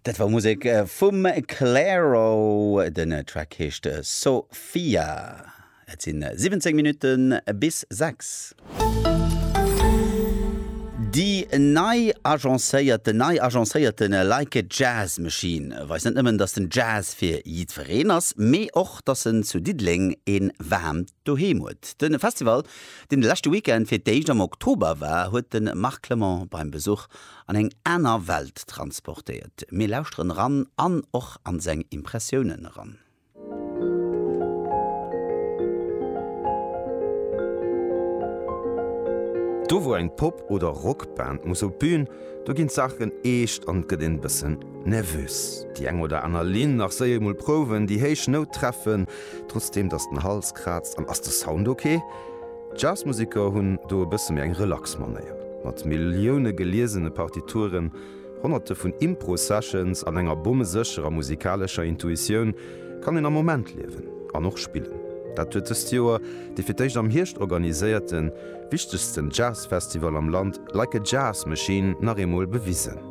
Dat war Musek vum Clairo, den Track heescht Sophia. Et si 17 Minutte bis 6. Déi nei agencéiert, den nei agencéierte Like a Jazz Machine weist net nëmmen, datt den Jazz fir jiddwereen ass, mee och, datt en zu Diddeleng ee waarmt Doheem huet. De Festival, deen de leschte Weekend fir d'éischt am Oktober war, huet de Marc Clement beim Besuch an eng aner Welt transportéiert. Mir lauschteren eran an och an seng Impressiounen eran. Do wou eng Pop oder Rockband muss op d'Bühn, do ginn d'Saachen eescht an et gëtt een e bëssen Nervös, déi eng oder aner Linn nach séier mol prouwen, déi héich Nout treffen, trotzdeem dass den Hals kraazt, an ass de Sound ok? D'Jazzmuseker hunn do e bësse méi eng relax Manéier, mat Millioune geliesene Partituren, honnerte vun Impro-Sessions an enger bommesécherer musikalescher Intuitioun kann een am Moment liewen an och spillen. Dat huet dëst Joer dee fir d'éischt am Hierscht organiséierten, wichtegsten Jazzfestival am Land, Like a Jazz Machine, nach eemol bewisen.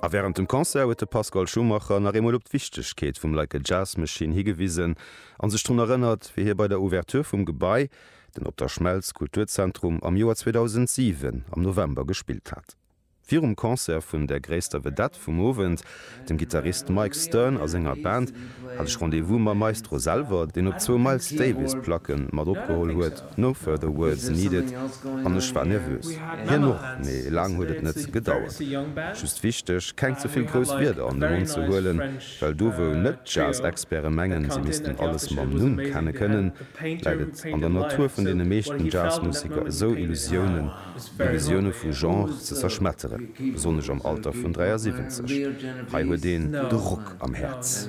A wärend dem Concert huet de Pascal Schumacher nach eemol op d'Wichtegkeet vum Like a Jazz Machine higewisen a sech drun erënnert, wéi hie bei der Ouverture vum Gebai, den Op der Schmelz Kulturzentrum, am Joer 2007 am November gespillt hat. Virum Concert vun der gréisster Vedette vum Owend, dem Gittarist Mike Stern a senger Band, hat ech Rendez-vous mam Maestro selwer, deen op zwou Miles Davis Placke mat opgeholl huet. No further words needed An ech war nervös. Hien och, mee laang huet et net gedauert. Just wichteg, keng ze vill grouss Wierder an de Mond ze huelen, well do wou net Jazz-Experte mengen, si missten alles mam Numm kenne kënnen, läit et an der Natur vun deene meeschten Jazzmuseker esou Illusiounen, Illusioune vu Genre ze zerschmetteren, besonnesch am Alter vun 73. Hei huet een de Rock am Häerz.